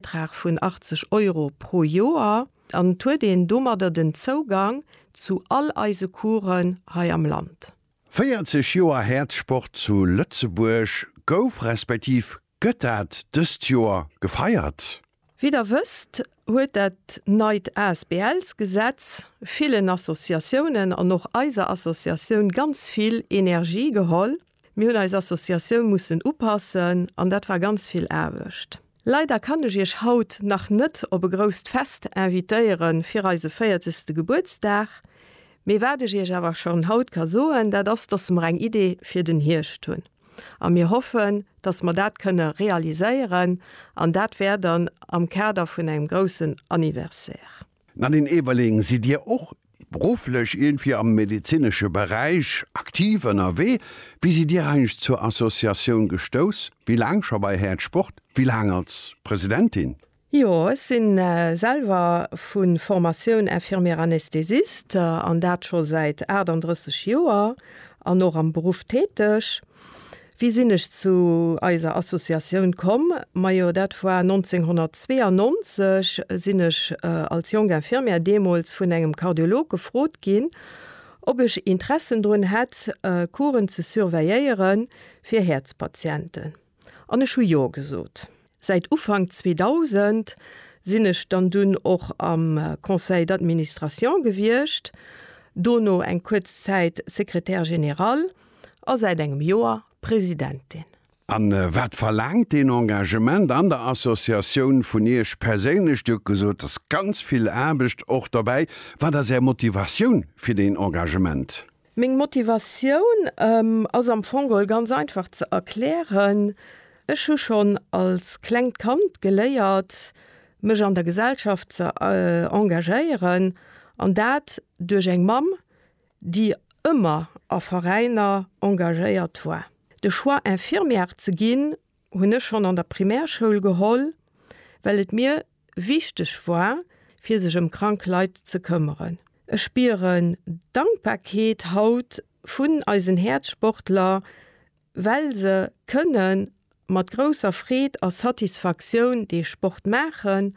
Betrag vun 80 Euro pro Joer an et huet een domadder den Zougang zu all eise Coursen hei am Land. 40 Joer Häerzsport zu Lëtzebuerg, Gouf respektiv gëtt dat dëst Joer gefeiert? Wéi der wësst, huet dat neit ASBLs-Gesetz villen Associatiounen an och eiser Associatioun ganz vill Energie geholl. Mir hunn eis Associatioun mussen upassen an dat war ganz vill Aarbecht. Leider kann ech Iech haut nach net op e grousst Fest invitéiere fir eise 40. Gebuertsdag, mee wat ech Iech awer schonn haut ka soen, dat ass, dass mer eng Idee fir den Hierscht hunn a mir hoffen, dass mer dat kënne realiséieren an dat wär dann am Kader vun engem groussen Anniversaire. D'Nadine Eberling, Sidd Dir och berufflech iergendwéi am medezinesche Beräich aktiv ënnerwee? Wéi sidd Dir eigentlech zur Associatioun gestouss? Wéi laang scho bei Häert Sport? Wéi laang als Presidentin? Jo, ech si selwer vu Formatioun Infirmière anesthésiste an dat scho säit 38 Joer an och am Beruff täteg. Wéi sinn ech zu eiser Associatioun komm? Majo dat war 1992, sinn ech als jonk Infirmière deemools vun engem Kardiolog gefrot ginn, ob ech Interessen drun hätt Couren ze surveilléiere fir Häerzpatienten, an ech hu jo gesot. Säit Ufank 2000 sinn ech dann dunn och am Conseil d'administration gewiescht, dono eng kuerz Zäit Secrétaire général a säit engem Joer Presidentin. A wat verlaangt deen Engagement an der Associatioun vun Iech perséinlech? Dir hutt gesot, et ass ganz vill Aarbecht och dobäi. Wat ass Är Motivatioun fir deen Engagement? Meng Motivatioun ass am Fong geholl ganz einfach ze erklären, Ech hu schonn als klengt Kand geléiert, mech an der Gesellschaft ze engagéieren, an dat duerch eng Mamm, déi ëmmer a Veräiner engagéiert war. De Choix, Infirmière ze ginn, hunn ech schonn an der Primärschoul geholl, well et mir wichteg war, fir sech ëm krank Leit ze këmmeren. Ech spieren Dankbarkeet haut vun eisen Häerzsportler, well se kënne mat grousser Freed a Satisfaktioun dee Sport maachen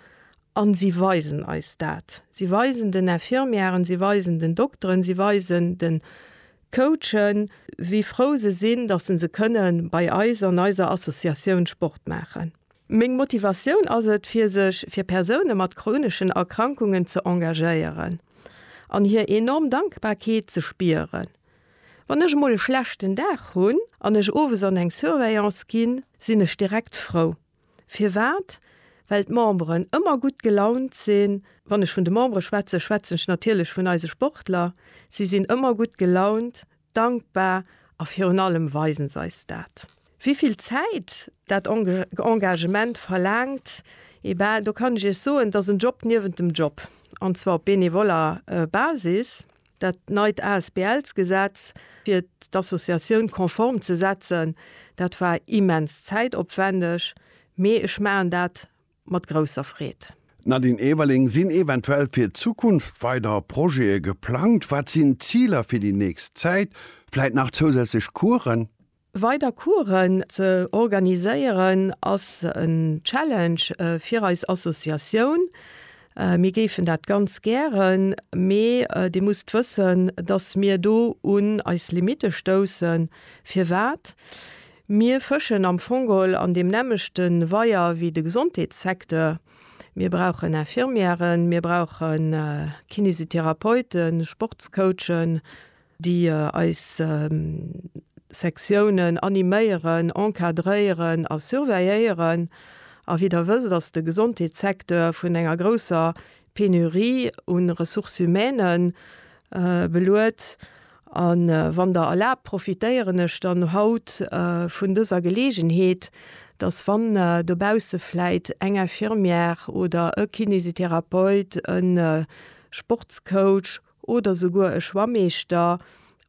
A si weisen eis dat. Si weisen den Infirmièren, si weisen den Dokteren, si weisen de Coachen, wéi frou se sinn, dass se se kënne bei eis an eiser Associatioun Sport maachen. Meng Motivatioun ass et, fir sech fir Persoune mat chroneschen Erkrankungen ze engagéieren an hir enorm Dankbarkeet ze spieren. Wann ech emol e schlechten Dag hunn an ech owes an eng Surveillance ginn, sinn ech direkt frou. Firwat? Well d'Memberen ëmmer gutt gelaunt sinn. Wann ech vun de Membere schwätzen, schwätzen ech natierlech vun eise Sportler. Si sinn ëmmer gutt gelaunt, dankbar a virun allem weisen se eis dat. Wéi vill Zäit dat Engagement verlaangt? Et ben, do kann ech Iech soen, et ass en Job niewent dem Job, an zwar op benevoller Basis. Dat neit ASBLs-Gesetz, fir d'Associatioun konform ze setzen, dat war immens zäitopwändeg, mee ech maachen dat mat grousser Freed. D'Nadine Everling, Sinn eventuell fir d'Zukunft weider Projete geplangt? Wat sinn d'Ziler fir déi nächst Zäit? Vläit nach zousätzlech Coursen? Weider Coursen ze organiséieren ass en Challenge fir eis Associatioun. Mir géifen dat ganz gären, mee Dir musst wëssen, dass mir do un eis Limitte stoussen. Firwat? Mir fëschen am Fong geholl an deem nämmlechte Weier wéi de Gesondheetssecteur. Mir brauchen Infirmièren, mir brauche Kinésithérapeuten, Sportscoachen. déi eis Sektiounen animéieren, encadréieren a surveilléieren, a wéi Der wësst, ass de Gesondheetssecteur vun enger grousser Penurie u Ressources humaines beluet. A wann Der erlaabt, profitéieren ech dann haut vun dëser Geleegenheet, dass, wann dobausse vläit eng Infirmière oder e Kinésithérapeute, e Sportscoach, oder souguer e Schwammeeschter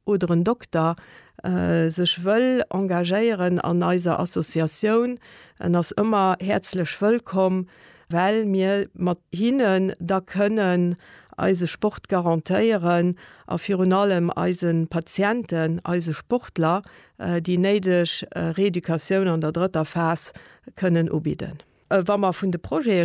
oder en Dokter sech wëll engagéieren an eiser Associatioun, en ass ëmmer häerzlech wëllkomm, well mir mat hinnen da kënnen eise Sport garantéieren a virun allem eise Patienten, eise Sportler déi néideg Reeducatioun an der drëtter Phas kënnen ubidden. Wa mer vun de Projete